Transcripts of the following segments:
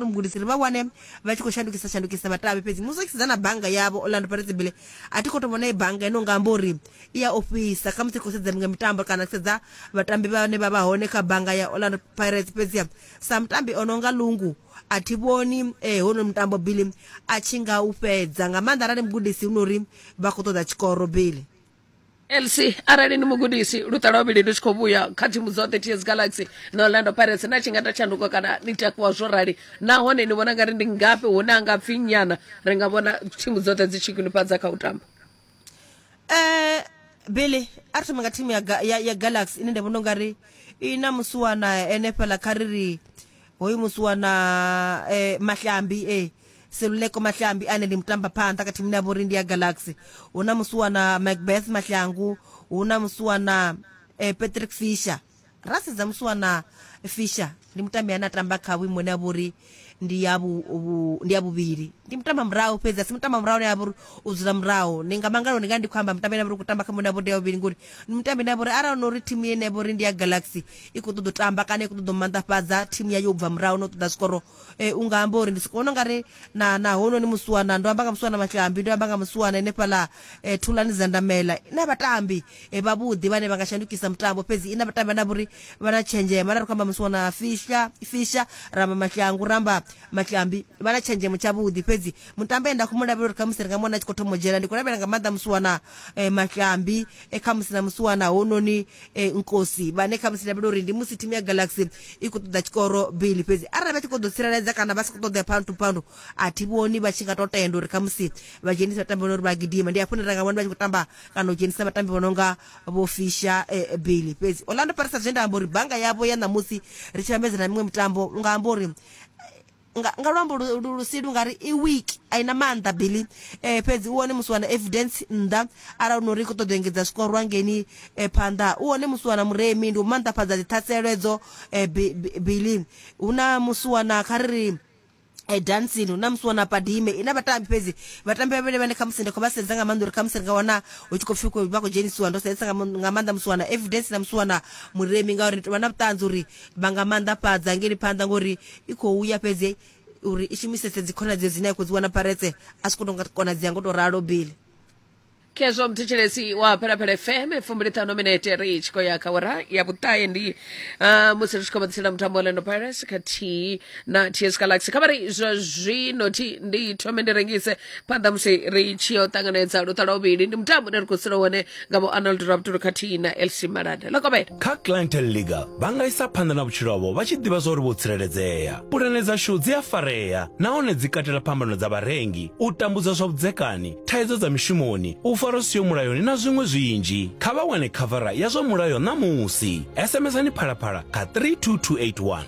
mugudisi ri vha wane vha tshi khou shandukisa shandukisa vhatambi fhedzi musi tshi sedza na bannga yavho orlando pirates bile a thi khou to vhona i bannga ino nga amba uri i ya ofhisa kha musi khou sedza miṅwe mitambo kana ku sedza vhatambi vhane vha vha hone kha bannga ya orlando pirates fhedzi sa mutambi o no nga lungu a thi vhoni eh, hono mutambo bile a tshi nga u fhedza nga maanḓa arali mugudisi hu no uri vha khou ṱoḓa tshikoro bile elsi arali ni mugudisi luṱa lwa vhuvhili lu tshi khou vhuya kha thimu dza thirty years galaxy na orlando pirates na tshi nga ta tshanduko kana ni takuwa zwo rali nahone ni vhona ngari ndi ngafhi hune a nga pfi nyana ri nga vhona thimu dzoṱhe dzi tshi khwinifhadza kha u tamba eh billy a ri thoma nga thimu ya, Ga- ya, ya galaxy ine nda vhona ungari i na musiwana ene fhala kha ri ri hoyu musiwana eh, mahlambi e seluleko mahlambi ane ndi mutambaphanḓa kha thimu ine ya vhori ndi ya galaxy hu na musuwana macbeth mahlangu hu na musuwana eh, patrick fisher ra sedza musuwana fisher ndi mutambi ane a tamba kha vhuimo ine ya vhori ndi ya vhu- vhu- ndi ya vhuvhili ndi mutamba murahu fhedzi asi mutamba murahu ine ya vhori u dzula murahu ndi nga mangalo ndi nga ndi khou amba mutambi ine ya vhori u khou tamba kha muine ya vhori ndi ya vhuvhili ngori ndi mutambi ine ya vhori arali no uri thimu ine ya vhori ndi ya galaxy i khou ṱoḓa u tamba kana i khou ṱoḓa u maanḓafhadza thimu yayo u bva murahu no ṱoḓa zwikoro E, u nga amba uri ndi soko vhona ungari na na hononi musiwana ndo amba nga musiwana matshambi ndo amba nga musiwana ene fhaḽa e, thulani dza ndamela ina vhatambi e, vhavhuḓi vhane vha nga shandukisa mutambo fhedzi ina vhatambi vhane vhuri vha na tshenzhemo ara ri khou amba musiwana fisha fisha ramba mashlangu ramba matshambi vha na tshenzhemo tshavhuḓi fhedzi mutambi enda khou mu lavhelela uri khamusi ri nga mona a tshi khou thoma u dzhena ndi khou lavhelela nga maanḓa musiwana e, matshambi e, khamusi na musiwana hononi e, nkosi vhane khamusi lavhelela uri ndi musi thimu ya galaxy i khou ṱoḓa tshikoro bili fhedzi arali vha tshi khou ḓo tsireledza kana vha si khou ṱoḓa pound to pound a thi vhoni vha tshi nga to tenda uri khamusi vha dzhenisa vhatambi vhano uri vha gidima ndi hafho hune ra nga vhona vha tshi khou tamba kana u dzhenisa vhatambi vho no nga vho fisha eh, bili fhedzi orlando pirates zwe nda amba uri banga yavho ya ṋamusi ri tshi vhambedza na miṅwe mitambo u nga amba uri nga, nga luambo lu, lu, lu si lu nga ri i weak a ina maanḓa billy eh, fhedzi u wone musi wana evidence nnḓa arali no ri i khou ṱoḓa u engedza zwikorwa ngeni eh, phanḓa u wone musi wana muremi ndi u maanḓafhadza dziṱhaselo edzo eh, billy hu na musi wana kha ri ri e dancing hu na musi wana padime ina vhatambi fhedzi vhatambi vhavhili vhane khamusi ndi khou vha sedza nga maanḓa uri khamusi ri nga wana hu tshi khou pfi vha khou dzhenisiwa ndo sedzesa nga maanḓa musi wana evidence na musi wana muremi ngauri ndi tovha na vhuṱanzi uri vha nga maanḓafhadza ngeli phanḓa ngori i khou ya fhedzi uri i shumisese dzikhonadzeo dzine ya khou dzi wana paretse a si khou tonga konadzea ngo tou ralo bili khezwo mthetshelesi wa phelapele fm fumbiliṱhanu minete ri tshi khou ya kha wara ya vhuṱahe ndi ah, musi ri tshi khou vhaḓisela mutambo wa lendo pirates khathihi na ts galaxy kha vha ri zwa zwino thi ndi thome ndi rengise phanḓa musi ri tshi yo ṱanganedza luṱa lwa vhuvhili ndi mutambo une ri khou sula wone nga vho arnold raptolo khathihi na lc malanda ḽa kovhela kha clientel legal vha nga isa phanḓa na vhutshilo havho vha tshi ḓivha zwa uri vho tsireledzea pulane dzashu dzi a farea nahone dzi katela phambano dza vharengi u tambudzwa zwa vhudzekani thaidzo dza mishumoni u fara siyo mulayoni na zwiṅwe zwinzhi kha vha wane khavara ya zwa mulayo ṋamusi sms-ani phalaphala kha 32281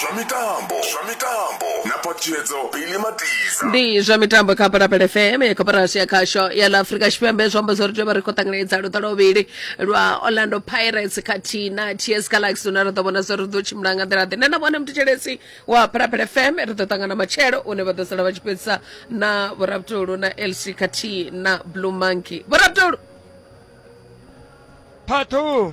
zwa mitambo zwa mitambo na patshedzo pili matiza ndi zwa mitambo kha palapala fm ya koporasi ya khasho ya la afurika tshipembe zwi amba zwo ri tea vha ri khou ṱanganedza luṱa lwovhili lwa orlando pirates khathihi na ts galaxy une ra ḓo vhona zwo ri ḓo tshimbila nga nḓila ḓe nṋe na vhone mutetshelesi wa palapala fm ri ḓo ṱangana matshelo une vha ḓo sala vha tshi fhedzisa na vhorabutolo na lc khathihi na blue monkey vhorabutolo Part two.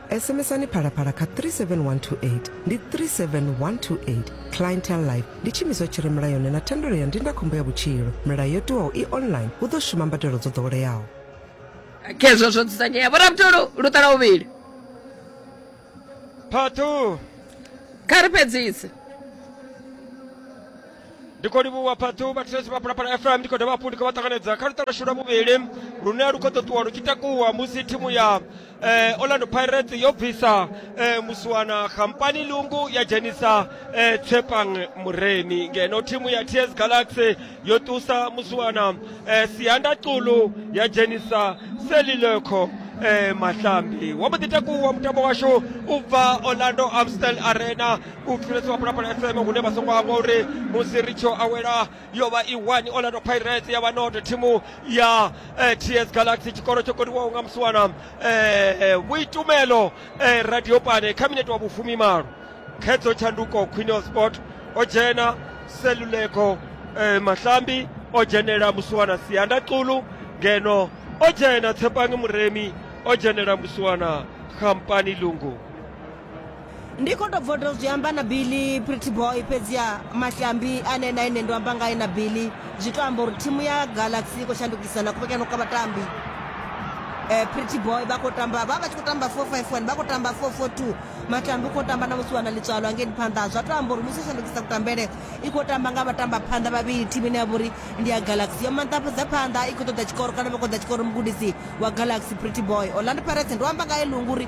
SMSani Phalaphala kha 37128, ndi 37128. Clientele Life ndi tshiimiswa tshi re mulayoni na thendelo ya ndindakhombo ya vhutshilo. Milayo yo tiwaho i online, hu ḓo shuma mbadelo dzo ḓoweleaho. khezwo zwo dzudzanyea vhorabutulu lu ṱala vhuvhili Part 2. kha ri fhedzise ndi khou livhuwa phathu vhathetshelesi vha phalaphala fm ndi khou dovha hafhu ndi khou vha ṱanganedza kha luṱa lwashu lwa vhuvhili lune lu khou ḓo ṱuwa lu tshi takuwa musi thimu ya eh, orlando pirates yo bvisa eh, musiwana khampani lungu ya dzhenisa eh, tshepang mureni ngeno thimu ya ts galaxy yo ṱusa musiwana eh, sianda xulu ya dzhenisa selilekho eh, mahlambi wa mbo ḓi takuwa mutambo washu u bva orlando amstel arena u pfulesa wa pulapula fm hune vha songo hangwa uri musi ri tsho awela yo vha i one orlando pirates ya vha not thimu ya eh, ts galaxy tshikoro tsho koniwaho nga musiwana eh, vhuitumelo eh, radio pane kha minete wa vhufumi malo khedzo tshanduko quinel sport o dzhena seluleko eh, mahlambi o dzhenela musiwana sianda xulu ngeno o dzhena tshepangi muremi o dzhenela musiwana khampani lungu ndi khou tou bva u tou zwi amba na billy pretty boy fhedziha matyambi ane na ine ndo amba ngae na billy zwi tou amba uri thimu ya galaxy i khou shandukisa na kuvhekano kwa vhatambi um pretty boy vha khou tamba vha vha tshi khou tamba four five one vha khou tamba four four two matambi u khou tamba na musi wana ḽitswalo angeni phanḓa zwa tou amba uri musi shandukisa kutambele i khou tamba nga vhatamba phanḓa vhavhili thimu ine ya vha uri ndi ya galaxy yo manḓafhadza phanḓa i khou ṱoḓa tshikoro kana vha khou ḓa tshikoro mugudisi wa galaxy pretty boy orlando pirates ndo amba ngae lungu uri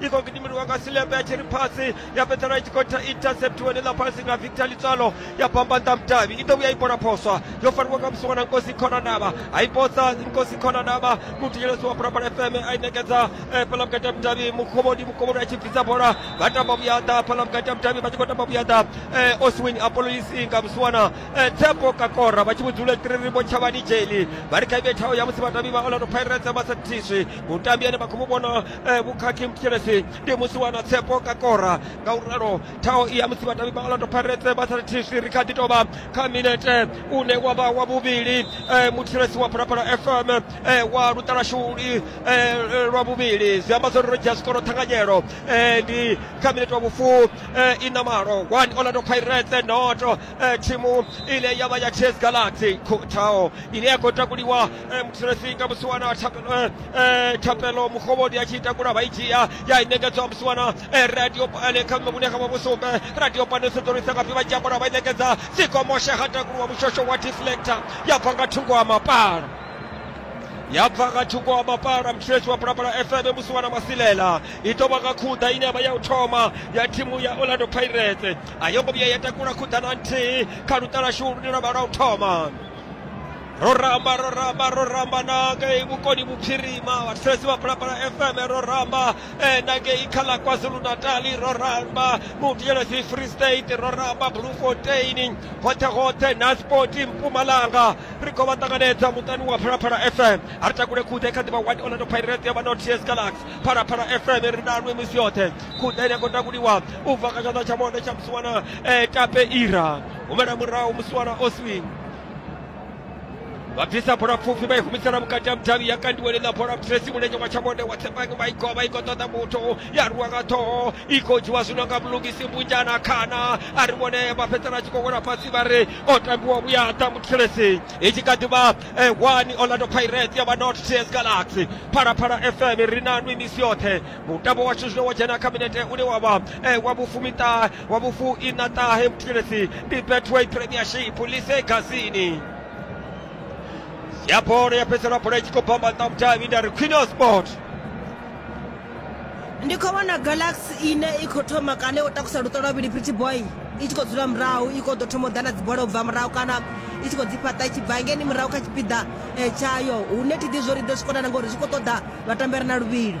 i khou gidimeliwa nga silembe a tshi ri pasi ya fhedzela i tshi khou interceptiwa ḽa pasi na victor litswalo ya bambanḓa mudavhi i ḓo vhuya i bola phoswa yo fariwa nga musiwa na nkosi khonanavha ha i posa nkosi khonanavha muthetshelesi wa bulabula fm a i ṋekedza eh, fhaḽa vhukati ha mudavhi mukhovhoni mukhovhoni a tshi bvisa bola vha tamba vhuyaḓa fhaḽa vhukati ha mudavhi vha tshi khou tamba vhuyaḓa eh, oswin apololisi nga musiwana eh, tsepo kakora vha tshi vhudzule tiriribo tshavhani jeli vha ri kha ivhe thaho ya musi vhadavhi vha orlando pirates vha sa thiswi mutambi ane vha khou mu vhona eh, vhukhakhi muthelesi ndi musi wana tsepo ka kora nga u ralo thaho i ya musi vhatavi vha orlando pirates vha sa thisi ri kha ḓi tovha kha minete une wa vha wa vhuvhili eh, muthelesi wa phalaphala fm eh, wa luṱalashuli eh, lwa vhuvhili zwi amba zwori ro dzhia zwikoro ṱhanganyelo eh, ndi kha minete wa vhufu eh, i na malo one orlando pirates noto eh, thimu ine ya vha ya ts galaxy Kho- thaho ine ya khou takuliwa Eh, mkusiresinga musiwana wa thapelo eh, eh, thapelo muhovhodi a tshi ita kula vha i dzhia ya i ṋekedzwa musiwana eh, radio pane kha mme vhune kha vha vhusumbe radio pane sedzorisa ngafhi vha dzhia bola vha i ṋekedza sikomoshe ha takuluwa mushosho wa deflector ya bva nga thungo wa mapala ya bva nga thungo wa mapala mtshireshi wa pulapula fm musiwana masilela i ḓo vha nga khuḓa ine ya vha ya u thoma ya thimu ya orlando pirates a yo ngo vhuya ya takula khuḓa na nthihi kha luṱalashu lune lwa vha lwa u thoma ro ramba ro ramba ro ramba na ngei vhukoni vhuphirima vhathetshelesi vha phalaphala fm ro ramba eh, na ngei kha ḽa kwazulu natali ro ramba mutiyelesi free state ro ramba blue fontain hoṱhe hoṱhe na spoti mpumalanga ri khou vha ṱanganedza muṱani wa phalaphala fm a ri takule khuḓe kha ḓivha wani orlando pirate ya vha no ts galax phalaphala fm ri nanwe misi yoṱhe khuḓe ine ya khou takuliwa u bva kha tshanḓa tsha monde tsha musiwana eh, tape ira humela murahu musiwana oswing vha bvisa bola pfufhi vha i humisela vhukati ha mudavhi ya kandiwa ḽiḽa bola pfesi mulenzhe wa tshavhonde wa tsepang vha i goa vha i khou ṱoḓa muthu ya rwiwa nga ṱhoho i khou dzhiwa zwino nga mulungisi mbunjana khana a ri vhone vha fhedzisela tshi khou wela fhasi vha ri o tambiwa vhuyaḓa muthelesi i tshi kha ḓi vha one orlando pirate ya vha not ts galaxy phalaphala fm ri na nwi misi yoṱhe mutambo washu zwino wa dzhena kha minete une wa vha wa vhufumiṱahe wa vhufu ina ṱahe muthelesi ndi betway premiership lise gazini ya bola ya fhedzisela bola i tshi khou bamba nṱha mutavhi nda ri queen of sport ndi khou vhona galaxy ine i khou thoma kana o takusa luṱo lwa vhili pretty boy i tshi khou dzula murahu i khou ḓo thoma u ḓa na dzibola u bva murahu kana i tshi khou dzi fhaṱa i tshi bva ngeni murahu kha tshipiḓa eh, tshayo hune thi ḓi zwo ri ḓo zwi konana ngori zwi khou ṱoḓa vhatambela na luvhilo